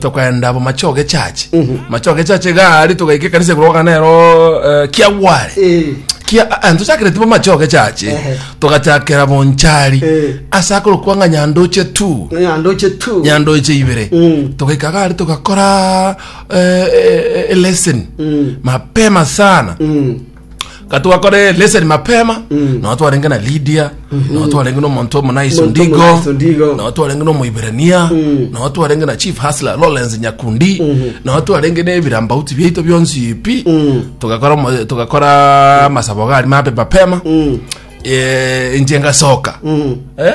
tokaenda bo mache ogechache mache ogechache iga aria togaika ekanisa igoro ogokana nero eh, kiagware Eh. kia ah, ah, ntochakire tibo mache ogechache Ehe. togachakera bonchari Eh. ase akorokwa ng'a nyandoche tu nyandoche tu nyandoche ibere Mm. togaika gari togakora eh, eh, eh, lesson Mm. mapema sana Mm. katwakore leseni mapema mm. nao twarenge na lidia mm -hmm. nao twarenge na omonto omonaiso ndigo nao twarenge na omoiberania mm. nao twarenge na chief hasla lawrence nyakundi mm -hmm. nao twarenge na ebirambauti biaito bionsi pi mm. togakora togakora masabo gari mabe mapema mm. e, eh, inje ngasoka mm. eh?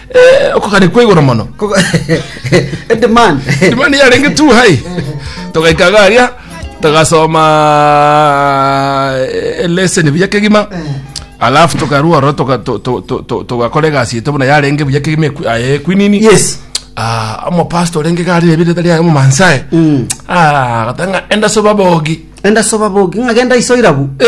Eh, okogania kwa igoro mono A demand. dimani yarenge tu hai togaikaga aria togasoma eh, lesson buya kegima alafu tokarua oro toga- to- to- to- to- togakora egasi ete buna yarenge buya kegima ekwi- ah, eh, kwinini Yes. Ah, omopastor orenge gari ebire tari aye momansae Mm. Ah, gatanga enda soba bogi Enda soba bogi ng'agenda isoirabu. Eh?